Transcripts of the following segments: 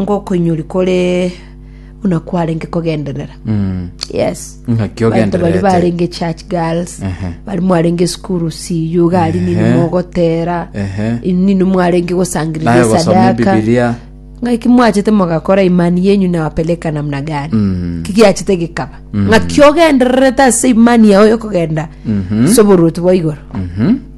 ngokoinyori kore buna kwarenge kogenderera Mm. yes Ng'aki Baito bari ogendererete. barenge church girls Ehe. bari mwarenge esukuru siyu gari nini Ehe. mogotera Ehe. nini mwarenge gosangirira Naye gosoma esadaka Bibilia. ng'aki mwachete mogakora imani yenyu nawapeleka namna gani Mm. kigiachete gikaba ng'aki ogendererete ase imani yao yokogenda soboruoti bwa igoro Mhm.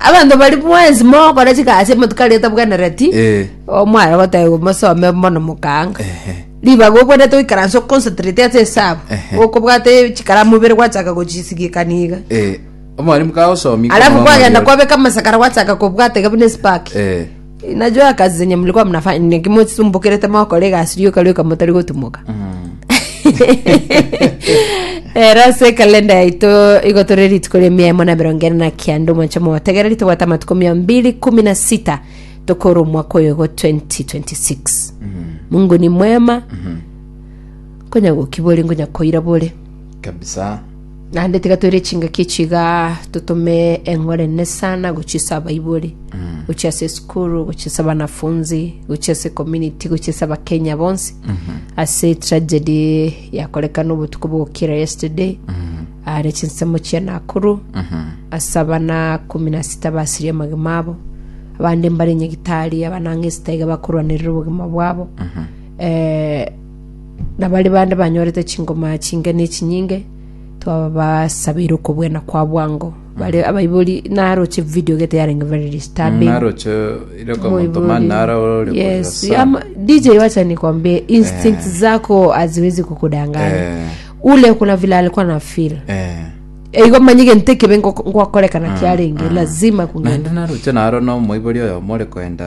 Abanto bari bwensi mogokora chigasi omonto kare atabwenereti Eh. o mware goteba mosome mono mokaanga Ehe. ribaga obwenete oikaranse oconcentrate ase esabu Ehe. okobwata chikaramu ibere gwachaka gochisigikani iga Eh. Omwalimu kagosomi. alafu kwagenda kwabeka amasakara gwachaka kobwatega buna esipaki Eh. Nacho akasi zenye mlikuwa mnafanya ni kimosumbukerete mokore egasi rioka rioka motari gotumoka ero ase ekalenda yaito igo tore rituko ria mia emo na emerongo ene na kianda omonche motegereri tobwate amatuko mia mbiri kumi na sita tokora omwaka oyo igo 2026 mungu ni mwema konya gokibore ngonya koira bore kabisa Naende tiga toire chingaki echi igaa, totome eng'orene sana gochia ase abaibori, gochia ase esukuru, gochia ase abanafunzi, gochia ase community, gochia ase abakenya bonsi, ase tragedy yakorekana obotuko bwa gokira yesterday, are chinsemo chia Nakuru, ase abana kumi na sita basiria amagima abo, abande mbare nyagitari abanang'esta iga bakorwanerera obogima bwabo. Eh, na baria bande banyorete chingoma chinge ne chinyinge, twabasabeire okobwena kwa bwango. Bare abaibori naroche video gete yarenge very disturbing. naroche ire kwa Moibori. motomani nara ore Yes, koyosa. ama- DJ wacha nikwambie instinct zako haziwezi kukudanganya. Eh. Ule kuna vile alikuwa na feel. Eh. Eigo manye gento ekebe ngoko- ngwakorekana kiarenge lazima kungenda. naende naroche naro nomoibori oyo more koenda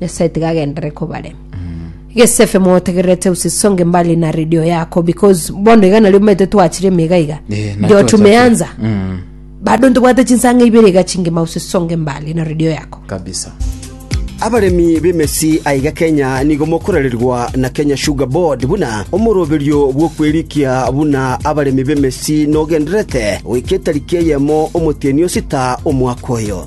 nyasaye tiga agendere kobarema gesefe motegererete usisonge mbali na radio yako because bono iga nario omanyete twachire emega iga Eh, na ndio twachakire. tumeanza Mm, bado ntobwate chinsanga ibere iga chingima usisonge mbali na radio yako kabisa abaremi b'emesi aiga kenya nigo mokorererwa na kenya sugar board buna omoroberio bw'okwerikia buna abaremi b'emesi nogenderete goika etariki eyemo omotienyi osita omwaka oyo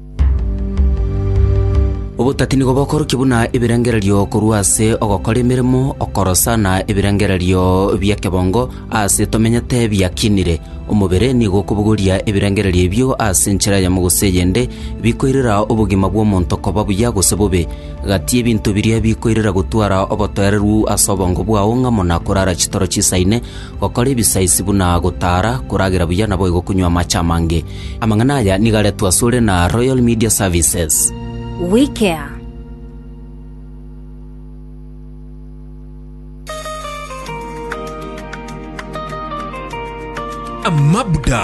Obotati nigo bokorokia buna ebirengererio korwa ase ogokora emeremo, okorosa, na ebirengererio bi'ekebongo aase tomenyete biakinire. Omobere nigo okobogoria ebirengererio ebio ase enchera eyemo gose eyende, bikoirera obogima bw'omonto koba buya gose bobe. Gati ebinto biria bikoirera gotwara obotoereru ase obongo bwao ng'amo na korara chitoro chisaine, gokora ebisaisi buna gotaara, koragera buya naboigo konywa amache amange. Amang'ana aya nigo aretwe asore na Royal Media Services. We care. Amabda.